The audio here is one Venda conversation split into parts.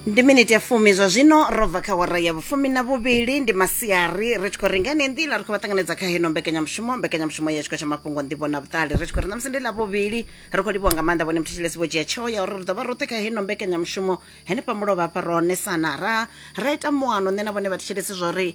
ndi miniti ya fumi zwa zwino ro bva kha wara ya vhufumi na vhuvhili ndi masiari ri tshi khou renga ine nḓila ri khou vha ṱanganedza kha heno mbekanyamushumo mbekanyamushumo ya tshiko tsha mafhungo nḓivho na vhuṱali ri tshi khou ri ṋamusi ndi ḽa vhuvhili ri khou livhuwa nga maanḓa vhone muthetshilesi vho dzhia tsheo ya uri ri ḓo vha roṱhe kha heno mbekanyamushumo henefha mulovha hafha ro onesana ra ra ita muano nṋe na vhone vhathetshilesi zwa uri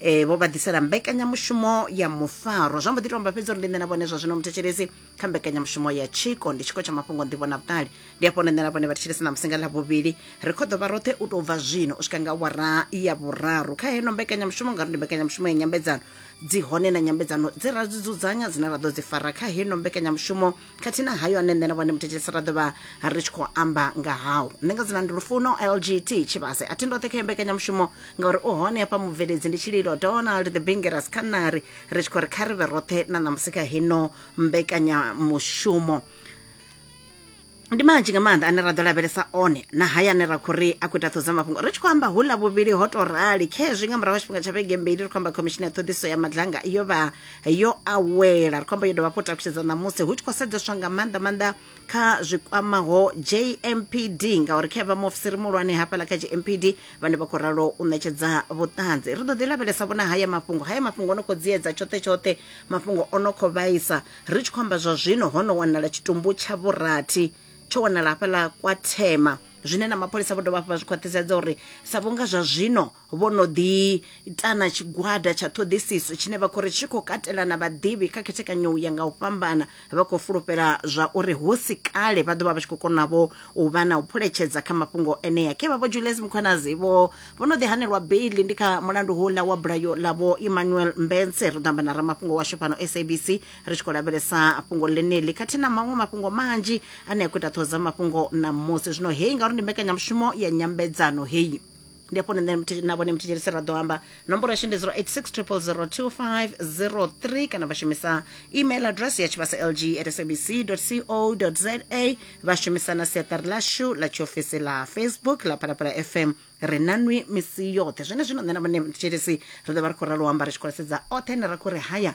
e, vho vha ḓisela mbekanyamushumo ya mufaro zwa mbo ḓi tomba fhedzi uri ndi nṋe na vhone zwa zwino muthetshelesi kha mbekanyamushumo ya tshiko ndi tshiko tsha mafhungo nḓivho na vhuṱali ndi afho nṋe na vhone vhathetshelesi na musinga ḽa vhuvhili ri kho ḓo vha roṱhe u tou bva zwino u swika nga wara ya vhuraru kha heno mbekanyamushumo ngauri ndi mbekanyamushumo ya nyambedzano dzi hone na nyambedzano dzi ra dzi dzudzanya dzine ra ḓo dzi fara kha heno mbekanyamushumo khathihi na hayo ane nṋe na vhone muthetshelesi ra ḓovha ri tshi khou amba nga hao nṋe nga dzina ndi lufuno lgt tshivhase a thi ndoṱhe kha yo mbekanyamushumo ngauri u hone hafha mubveledzi ndi tshililo donald the bingeras kha nari ri tshi khou ri kha ri vhe roṱhe na ṋamusi kha hino mbekanyamushumo ndi manzhi nga maanḓa ane ra ḓo lavhelesa one na haya ane ra khou ri a khou ita ṱhoḓa mafhungo ri tshi khou amba hula vhuvhili ho to rali khezwi nga murahu ha tshifhinga tsha vhege mbili ri khou amba khomishini ya ṱhoḓiso ya madlanga yo vha yo awela ri khou amba yo dovha hafhu takushedza ṋamusi hu tshi khou sedzeswa nga maanḓa maanḓa kha zwi kwamaho jmpd ngauri khe vha muofisiri muhulwane hafhaḽa kha jmpd vhane vha khou ralo u ṋetshedza vhuṱanzi ri ḓo ḓi lavhelesa vhona haya mafhungo haya mafhungo o no khou dziedza tshoṱhe tshoṱhe mafhungo o no khou vhaisa ri tshi khou amba zwa zwino ho no wanala tshitumbu tsha vhurathi tsho wanala hafhaḽa kwa thema zwine na mapholisa vho dovha hafhu vha zwi khwaṱhisedza uri sa vhunga zwa zwino vho no ḓi ita na tshigwada tsha ṱhoḓisiso tshine vha khou ri tshi khou katela na vhaḓivhi kha khethekanyo ya nga u fhambana vha khou fulufhela zwa uri hu si kale vha ḓo vha vha tshi khou konavho u vha na u phuletshedza kha mafhungo enea khe vha vho Julius Mkhwanazi vho vho no ḓi hanelwa beili ndi kha mulandu houḽa wa bulayo ḽa vho Emmanuel Mbense ri ḓo amba na ramafhungo washu fhano SABC ri tshi khou lavhelesa fhungo ḽeneḽi khathihi na maṅwe mafhungo manzhi ane a khou ita ṱhoho dza mafhungo na musi zwino heyi ngauri ndi mbekanyamushumo ya nyambedzano heyi ndi afho nṋe mthi- na vhone mthetshelesi ra ḓo amba nomboro yashu ndi 0860002503 kana vha shumisa email address ya tshivhasa lg at sabc co za vha shumisa na siaṱari lashu ḽa tshiofisi ḽa facebook ḽa phalaphala fm ri na nwi misi yoṱhe zwene zwino nṋe na vhone mthetshelesi ri ḓo vha ri khou ralo amba ri tshi khou lasedza oṱhe ane ra khou ri haya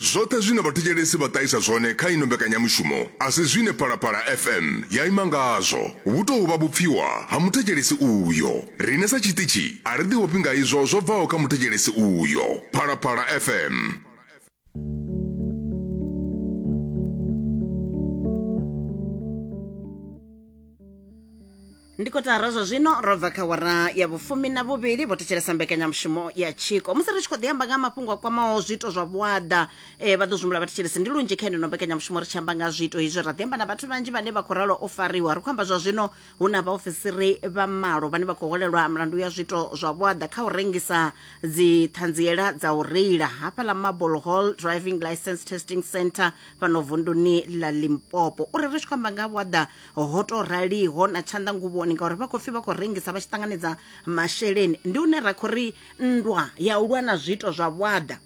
Zwoṱhe zwine vhathetshelesi vha ṱahisa zwone kha ino mbekanyamushumo a si zwine Phalaphala FM ya ima ngazwo. Vhu tou vha vhupfiwa ha muthetshelesi uyo. Riṋe sa tshiṱitshi a ri ḓivhofhi nga izwo zwo bvaho kha muthetshelesi uyo. Phalaphala FM. ndi kotara zwa zwino ro bva kha wara ya vhufumi na vhuvhili vho thetshelesa mbekanyamushumo ya tshiko musi ri tshi khou ḓi amba nga ha mafhungo a kwamaho zwiito zwa vhuaḓa eh, vha ḓo zwimula vhathetshelesi ndi lunzhi kha ino mbekanyamushumo ri tshi amba nga ha zwiito izwi ra ḓi amba na vhathu vhanzhi vhane vha khou ralo o fariwa ri khou amba zwa zwino hu na vhaofisiri vha malo vhane vha khou holelwa mulandu ya zwiito zwa vhuaḓa kha u rengisa dziṱhanziela dza u reila hafhaḽa marble hall driving license testing center fhano vunduni ḽa limpopo uri ri tshi khou amba nga ha vhuaḓa ho to raliho na tshanḓa nguvhoni ngauri vha khou pfi vha khou rengisa vha tshi ṱanganedza masheleni ndi une ra khou ri nndwa ya u lwa na zwiito zwa vhuaḓa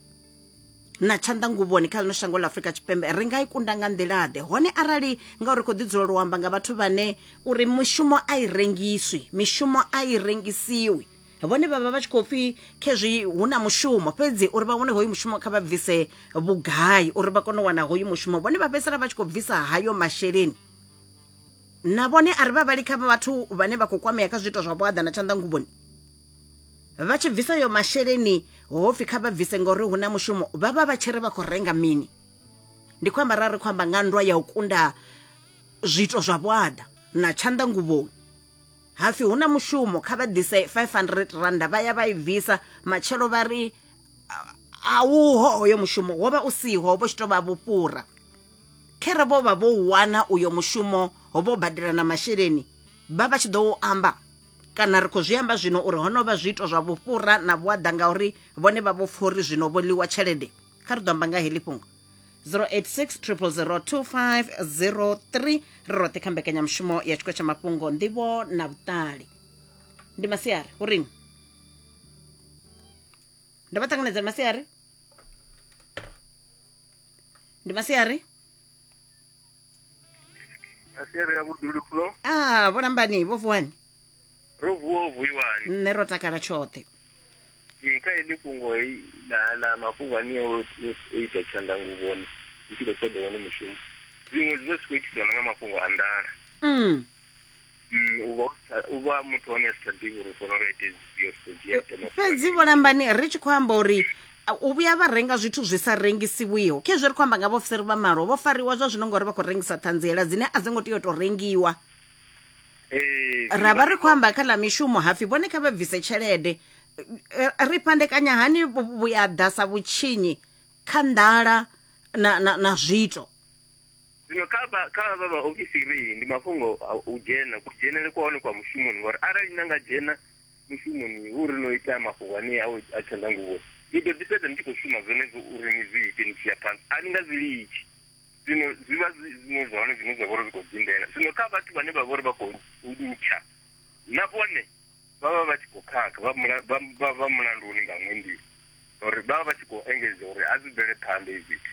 na tshanḓa nguvhoni kha ḽino shango ḽa afurika tshipembe ri nga i kunda nga nḓilaḓe hone arali ngauri ri khou ḓi dzulela u amba nga vhathu vhane uri mishumo a i rengiswi mishumo a i rengisiwi vhone vhavha vha tshi khou pfi khezwi hu na mushumo fhedzi uri vha wane hoyu mushumo kha vha bvise vhugai uri vha kone u wana hoyu mushumo vhone vha fhedzisela vha tshi khou bvisa hayo masheleni na vhone a ri vha vhali kha vhathu vhane vha khou kwamea kha zwiito zwa vhuaḓa na tshanḓa nguvhoni vha tshi bvisa yo masheleni hopfi kha vha bvise ngori hu na mushumo vha vha vha tshi ri vha khou renga mini ndi khou amba ra ri khou amba nga nndwa ya u kunda zwiito zwa vhuaḓa na tshanḓa nguvhoni hapfi hu na mushumo kha vha ḓise 500 randa vha ya vha i bvisa matshelo vha ri a uho hoyo mushumo wo vha u siho vho tshi tou vha vhufhura Khere vho vha vho wana uyo mushumo vho badela na masheleni vha vha tshi ḓo u amba kana ri khou zwi amba zwino uri ho no vha zwiito zwa vhufhura na vhuaḓa ngauri vhone vha vho pfha uri zwino vho ḽiwa tshelede kha ri ḓo amba nga heḽi fhungo 0860002503 ri roṱhe kha mbekanyamushumo ya tshikho tsha mafhungo nḓivho na vhuṱali ndi masiari u ring ndo vha ṱanganedza masiari ndi masiari asiari ya vhudulu flo ah vho lambani vho vuwani ro vuwa u vuiwani nṋe ro takala tshoṱhe Ee, kha heḽi fhungo hei ḽa ḽa mafhungo ane o o ita tshandanguvhoni ndi tshi khou ṱoḓa wone mushumo zwiṅwe zwi vha zwi khou itiswa na nga mafhungo a nḓala mm. u vha u vha muthu hone a si tsha ḓivha uri fona lwa ite zwifhio ri khou dzhia ite fhedzi vhulambani ri tshi khou amba uri u vhuya vha renga zwithu zwi sa rengisiwiho khezwo ri khou amba nga vhaofisiri vha malo vho fariwa zwa zwino ngori vha khou rengisa ṱhanziela dzine a dzi ngo tea u tou rengiwa ra vha ri khou amba kha ḽa mishumo hapfi vhone kha vha bvise tshelede ri fhandekanya hani vhuyaḓa sa vhutshinyi kha nḓala na, na, na zwiito zwino kha vha kha vha vha ofisiri ndi mafhungo u dzhena ku dzhenele kwa hone kwa mushumoni ngori arali na nga dzhena mushumoni hu ri no ita mafhungo ane a a tshanḓa nguvho ni ḓo ḓi fhedza ni tshi khou shuma zwenezwo uri ni zwi ite ni tshi ya phanḓa a ni nga zwi litshi zwino zwi vha zwi zwiṅwe zwa hone zwine zwa vha uri zwi khou dindela zwino kha vhathu vhane vha vha uri vha khou litsha na vhone vha vha vha tshi khou khakha vha mulanduni nga ṅwe nḓila ngauri vha vha vha tshi khou engedza uri a zwi bvele phanḓa hezwi zwithu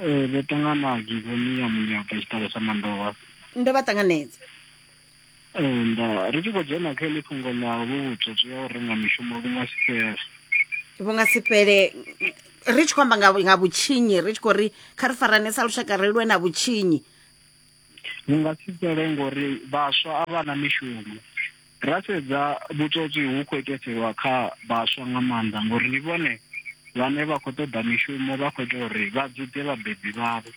Ee, ndo ṱangana givoni ya munyaka i tshi ṱalusa mandovha. Ndo vha ṱanganedza. Ee, nda ri tshi khou dzhena kha iḽi fhungo ḽa vhu vhutswotswi ha u renga mishumo vhu nga si fhele. Vhu nga si fhele ri tshi khou amba nga nga vhutshinyi ri tshi khou ri kha ri farane sa lushaka ri lwe na vhutshinyi. Vhu nga si fhele ngori vhaswa a vha na mishumo. Ra sedza vhutswotswi hu khou iteselwa kha vhaswa nga maanḓa ngori ndi vhone vhane vha khou ṱoḓa mishumo vha khou ita uri vha dzudze vhabebi vhavho,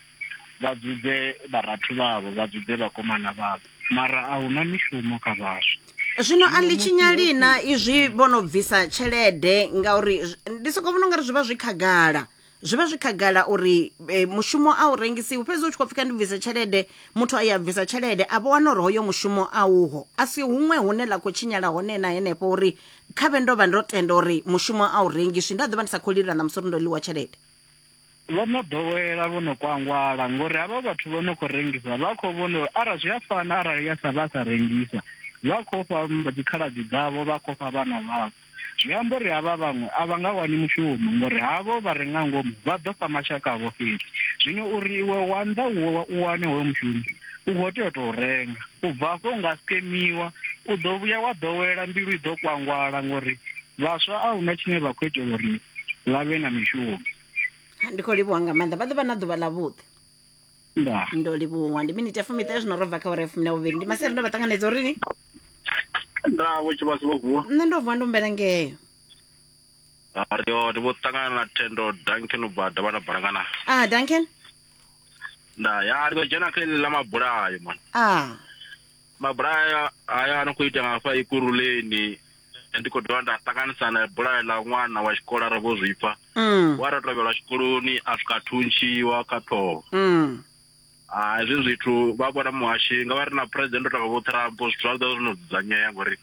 vha dzudze vharathu vhavho, vha dzudze vhakomana vhavho. Mara a huna mishumo kha vhaswa. Zwino a ḽi tshinyali na izwi vho no bvisa tshelede ngauri ndi soko vhona ungari zwi vha zwi khagala zwi vha zwi khagala uri e, mushumo a u rengisiwi fhedzi u tshi khou pfika ndi bvise tshelede muthu a ya bvisa tshelede a vho wana uri hoyo mushumo a uho a si huṅwe hune ḽa khou tshinyala hone na henefho uri kha vhe ndo vha ndo tenda uri mushumo a u rengiswi nda ḓo vha ndi sa khou lila na musi uri ndo ḽiwa tshelede vho no ḓowela vho no kwangwala ngori havha vhathu vho no khou rengisa vha khou vhona uri arali zwi a fana arali ya sa vha sa rengisa vha khou fha dzikhaladzi dzavho vha khou fha vhana vhavho Zwi amba uri havha vhaṅwe a vha nga wani mushumo, ngauri havho vha re nga ngomu vha ḓo fha mashaka avho fhedzi. Zwino uri iwe wa nnḓa u wane hoyo mushumo, u khou tea u tou renga. U bva afho u nga skemiwa, u ḓo vhuya wa ḓowela, mbilu i ḓo kwangwala ngauri vhaswa a hu na tshine vha khou itela uri vha vhe na mishumo. Ndi khou livhuwa nga maanḓa. Vha ḓo vha na ḓuvha ḽavhuḓi. nda ndo livhuwa ndi miniti ya fumiṱahe zwino ro bva kha ora ya fumi na vhuvhili ndi masere ndo vha ṱanganedza uri ni nda vho tshivhasi vho vuwa nṋe ndo vuwa ndo mbela ngeyo ri hone vho ṱangana na thendo duncan u bva davha na balangana ah duncan nda ya ri ḓo dzhena kha iḽi ḽa mabulayo mani ah Mabulayo haya a no khou itea nga hafha Ikuruleni ndi khou dovha nda ṱanganisa na bulayo ḽa ṅwana wa tshikolo ara vho zwipfa mm. wa ra tovhelwa tshikoloni a swika thuntshiwa kha ṱhoho mm. a ah, hezwi zwithu vha vhona muhashi nga vha ri na president o tanga vho Trump zwithu zwa ḓo zwo no dzudzanyea ngori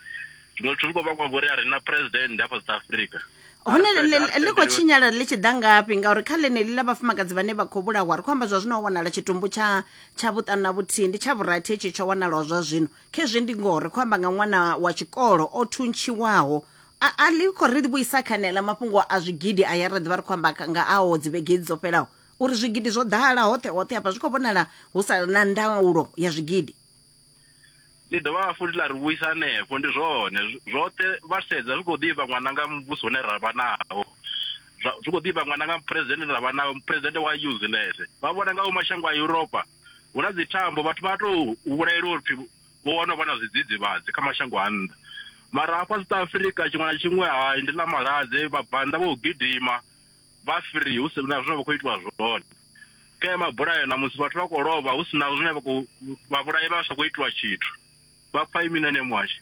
ndo tshulu ko vhangwa ngori a re na president hafha south africa hone ḽi khou tshinyala ḽi tshi ḓa ngafhi ngauri kha ḽeneḽi ḽa vhafumakadzi vhane vha khou vhulahwa ri khou amba zwa zwino ho wanala tshitumbu tsha tsha vhuṱanu na vhuthihi ndi tsha vhurathi hetshi tsho wanalaho zwa zwino khezwi ndi ngoho ri khou amba nga ṅwana wa tshikolo o thuntshiwaho a ḽi khou ri vhuisa kha neḽa mafhungo a zwigidi a ya ri ḓivha ri khou amba nga aho dzivhege dzo fhelaho uri zwigidi zwo ḓala hoṱhe hoṱhe hafha zwi khou vhonala hu sa na ndaulo ya zwigidi ḽi dovha hafhu ḽa ri vhuisa hanefho ndi zwone zwoṱhe vha sedza zwi khou ḓivha ṅwana nga muvhuso une ra vha nawo zwi khou ḓivha ṅwana nga muphuresidennde une ra vha nawo muphuresidennde wa useless vha vhona nga mashango a Europa hu na dzithambo vhathu vha tou vhulaelwa uri vho wana vha na zwidzidzivhadzi kha mashango a nnḓa mara hafha South Africa tshiṅwe na tshiṅwe hai ndi ḽa malwadze vhabvannḓa vho gidima vha free hu si na zwine vha khou itiwa zwone kha ya mabulayo na musi vhathu vha khou lovha hu si na zwine vha khou vha vhulayi vha sa khou itiwa tshithu vha pfa imi nane mwashe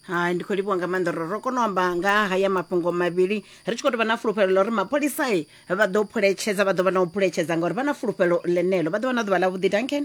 hai ndi khou livhuwa nga maanḓa uri ro kona u amba nga ha haya mafhungo mavhili ri tshi khou tou vha na fulufhelo ḽa uri mapholisai vha ḓo phuletshedza vha ḓo vha na u phuletshedza ngauri vha na fulufhelo ḽeneḽo vha ḓo vha na ḓuvha ḽa vhuḓi duncan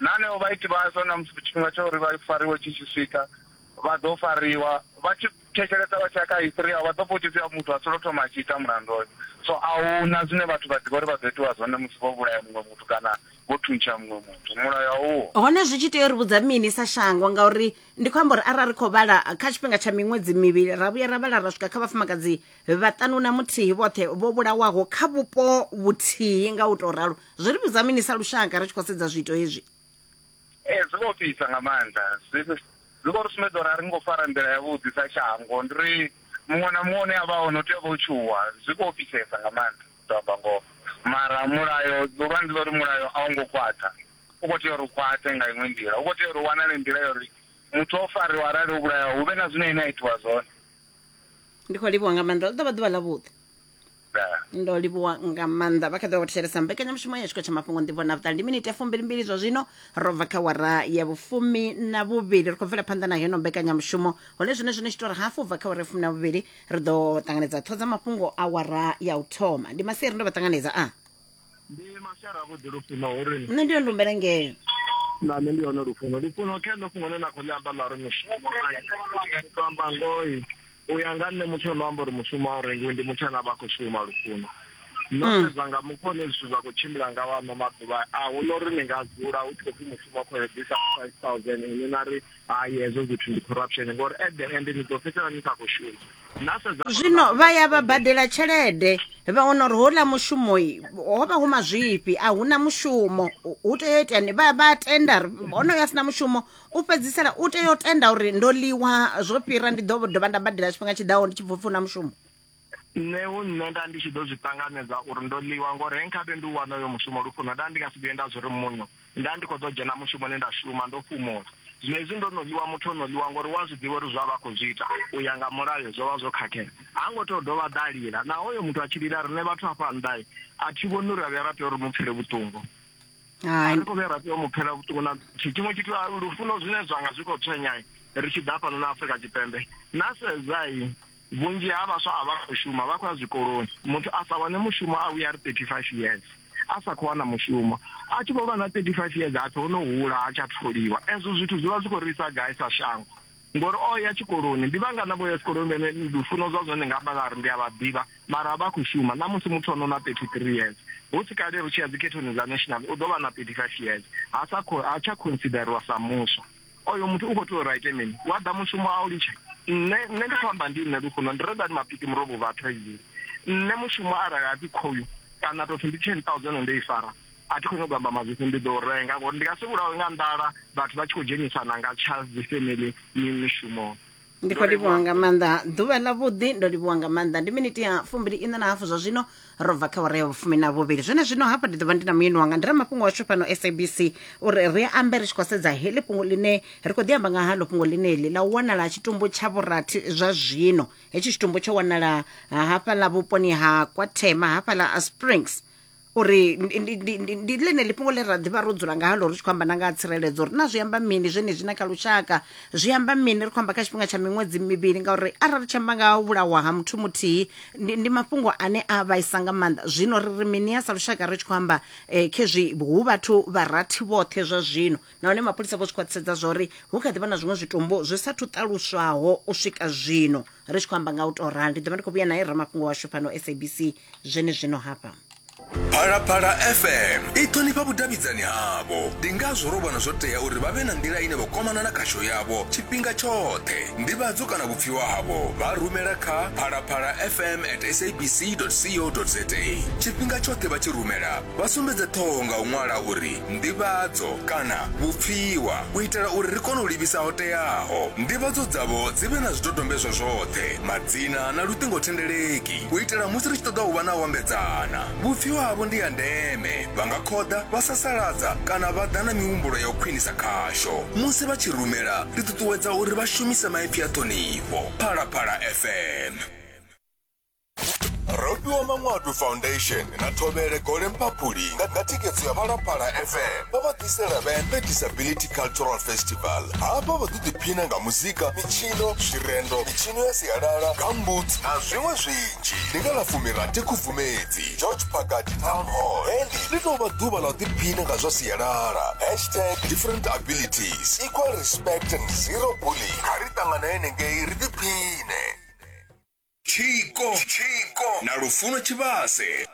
Na hanevho vhaiti vhazwo, na musi tshifhinga tsha uri vha fariwe tshi tshi swika, vha ḓo fariwa. Vha tshi thetshelesa vha tshi ya kha history yavho, vha ḓo pfa hu tshi pfi muthu a songo thoma a tshi ita mulandu hoyo. So a hu na zwine vhathu vha ḓivha uri vha ḓo itiwa zwone musi vho vhulaya muṅwe muthu kana vho thuntsha muṅwe muthu. Mulayo a uho. Hone zwi tshi tea u ri vhudza mini sa shango? Ngauri ndi khou amba uri arali ri khou vhala kha tshifhinga tsha miṅwedzi mivhili, ra vhuya ra vhala ra swika kha vhafumakadzi vhaṱanu na muthihi vhoṱhe vho vhulawaho kha vhupo vhuthihi nga u tou ralo. Zwi ri vhidza mini sa lushaka ri tshi khou sedza zwiito hezwi? Ee, zwi vho fhisa nga maanḓa. Zwi zwi khou ri sumbedza uri a ri ngo fara nḓila yavhuḓi sa shango. Ndi ri muṅwe na muṅwe une a vha hone u tea u vha o tshuwa. Zwi khou fhisesa nga maanḓa, ndi ḓo amba ngoho. Mara mulayo, ḓuvha ndi ḽa uri mulayo a u ngo khwaṱha. U khou tea uri u khwaṱhe nga iṅwe nḓila. U khou tea uri hu wanale nḓila ya uri muthu o fariwa arali o vhulayaho hu vhe na zwine ene a itiwa zwone. Ndi khou livhuwa nga maanḓa. Ḽi ḓo vha ḓuvha ḽavhuḓi. ndo livhuwa nga maanḓa vha kha ḓi vha vho thetshelesa mbekanyamushumo ya tshiko tsha mafhungo ndivho na vhuṱali ndi miniti ya fumbilimbili zwa zwino ro bva kha wara ya vhufumi na vhuvhili ri khou bvela phanḓa na heno mbekanyamushumo hone zwine zwine tshitori hafu bva kha wara ya fumi na vhuvhili ri ḓo ṱanganedza ṱhodza mafhungo a wara ya u thoma ndi masiari ndo vha ṱanganedza a ndi mashara avhuḓi lufuno hu ri nṋe ndi yo ndumbela ngeo na nṋe ndi hone lufuno lufuno kha ḽo fhungo ḽe na khou ḽi amba ḽa ri mushumo to amba ngoi u ya nga nṋe muthu ono amba uri mushumo a u rengiwi ndi muthu ane a vha a khou shuma lufuno no hmm. sedza nga mufho ne zwithu zwa khou tshimbila nga wano maḓuvha a hu no ri ni nga dzula hu tshi khou pfi mushumo khou eḓisa five thousand ini na ri hai hezwo zwithu ndi corruption ngori at the end ni ḓo fhedzisela ni sa khou shuma zwino vha ya vha badela tshelede vha wana uri houḽa mushumo ho vha hu mazwifhi a hu na mushumo hu tea u itani vha vha tenda honoyo a si na mushumo u fhedzisela u tea u tenda uri ndo ḽiwa zwo fhira ndi ḓo dovha nda badela tshifhinga tshiḓaho ndi tshi bvupfi hu na mushumo nṋe hu nṋe nda ndi tshi ḓo zwi ṱanganedza uri ndo ḽiwa ngori he nkhabe ndi u wana uyo mushumo lufuno nda ndi nga si vhuye nda zwi ri muno nda ndi khou ḓo dzhena mushumoni nda shuma ndo fhumula zwino hezwi ndo no ḽiwa muthu o no ḽiwa ngori wa zwi ḓivha uri zwa vha khou zwi ita u ya nga mulayo zwo vha zwo khakhea ha ngo tea u dovha ḓa lila naho uyo muthu a tshi lila riṋe vhathu hafha nnḓa a thi vhoni uri a vhuya ra tea uri mu pfele vhuṱungu a ri khou vhuya ra tea u mu pfela vhuṱungu na tshiṅwe tshithu lufuno zwine zwanga zwi khou tswenyai ri tshi ḓa fhano na Afrika Tshipembe na sedzai Vhunzhi ha vhaswa a vha khou shuma, vha khou ya zwikoloni. Muthu a sa wane mushumo a vhuya a ri 35 years a sa khou wana mushumo. A tshi vho vha na 35 years ha pfi o no hula ha tsha tholiwa. Ezwo zwithu zwi vha zwi khou ri isa gai sa shango? Ngori o ya tshikoloni, ndi vhangana vho ya tshikoloni vhane lufuno zwa zwone nga amba vha ri ndi a vha ḓivha mara a vha khou shuma. Ṋamusi muthu o no na 33 years, hu si kale ri tshi ya dzikhethoni dza national u ḓo vha na 35 years, ha sa khou, ha tsha consideriwa sa muswa. oyo muthu u khou tea uri a ite mini wa ḓa mushumo a u litshe nṋe nṋe ndi khou amba ndi nṋe lufuno ndi redani mapiki murobo vhathu aizii nṋe mushumo arali a pfi khoyu kana tou pfi ndi ten thousand ndo i fara a thi khou nyanga u amba mazwifhi ndi ḓo renga ngori ndi nga si vhulawe nga nḓala vhathu vha tshi khou dzhenisana nga tsha dzi family mishumoni ndi khou livhuwa nga maanḓa ḓuvha ḽa vhuḓi ndo livhuwa nga maanḓa ndi miniti ya fumbili iṋa na hafu zwa zwino ro bva kha wara ya vhufumi na vhuvhili zwone zwino hafha ndi ḓovha ndi na muyeni wanga ndi ramafhungo washu fhano sabc uri ri ambe ri tshi khou sedza heḽi fhungo ḽine ri khou ḓi amba nga halo fhungo ḽineḽi ḽa u wanala tshitumbu tsha vhurathi zwa zwino hetshi tshitumbu tsho wanala hafhaḽa vhuponi ha kwathema hafhaḽa a springs uri ndi- ndi- ndi- ndi- ndi ḽeneḽi fhungo ḽe ra ḓivha ro dzula ngalo ri tshi khou amba na nga ha tsireledzo uri na zwi amba mini zwenezwi na kha lushaka zwi amba mini ri khou amba kha tshifhinga tsha miṅwedzi mivhili ngauri arali ri tshi amba nga ha u vhulawa ha muthu muthihi ndi, ndi mafhungo ane a vhaisa nga maanḓa zwino ri ri mini ya sa lushaka ri tshi khou amba eh, khezwi hu vhathu vha rathi vhoṱhe zwa zwino nahone mapholisa vho zwi khwaṱhisedza zwa uri hu kha ḓi vha na zwiṅwe zwitumbu zwi sathu ṱaluswaho u swika zwino ri tshi khou amba nga u tou rali ndi ḓo vha ndi khou vhuya naye ramafhungo washu fhano sabc zwenezwino hafha phalaphala fm i ṱhonifha vhudavhidzani havho ndi ngazwo ro vhona zwo tea uri vha vhe na nḓila ine vha kwamana na khasho yavho tshifhinga tshoṱhe ndivhadzo kana vhupfiwa havho vha rumela kha phalaphala fm at sabc co za tshifhinga tshoṱhe vha tshi rumela Vha sumbedze ṱhoho nga u ṅwala uri Nḓivhadzo kana Vhupfiwa u itela uri ri kone u livhisa ho teaho. Nḓivhadzo dzavho dzi vhe na zwidodombedzwa zwoṱhe, madzina na luṱingothendeleki u itela musi ri tshi ṱoḓa u vha na u ambedzana. Vhupfiwa havho ndi ha ndeme, vha nga khoḓa, vha sasaladza kana vha ḓa na mihumbulo ya u khwinisa khasho. Musi vha tshi rumela, ri ṱuṱuwedza uri vha shumise maipfi a ṱhonifho. Phalaphala FM. rofhiwa manwadu foundation na thovhele gole mphaphuli nga nga thikhedzo ya phalaphala fm vha vha ḓisela vhembe disability cultural festival hafha vha ḓo ḓiphina nga muzika mitshino zwirendo mitshino ya sialala gambut na zwiṅwe zwinzhi ndi nga ḽa fumirathi khubvumedzi george pakati town hall hendi ḽi tou vha ḓuvha ḽa u ḓiphina nga zwa sialala hashtag different abilities equal respect and zero bullying kha ri ṱangana henengei ri ḓiphine Tshiko na Lufuno Tshivhase.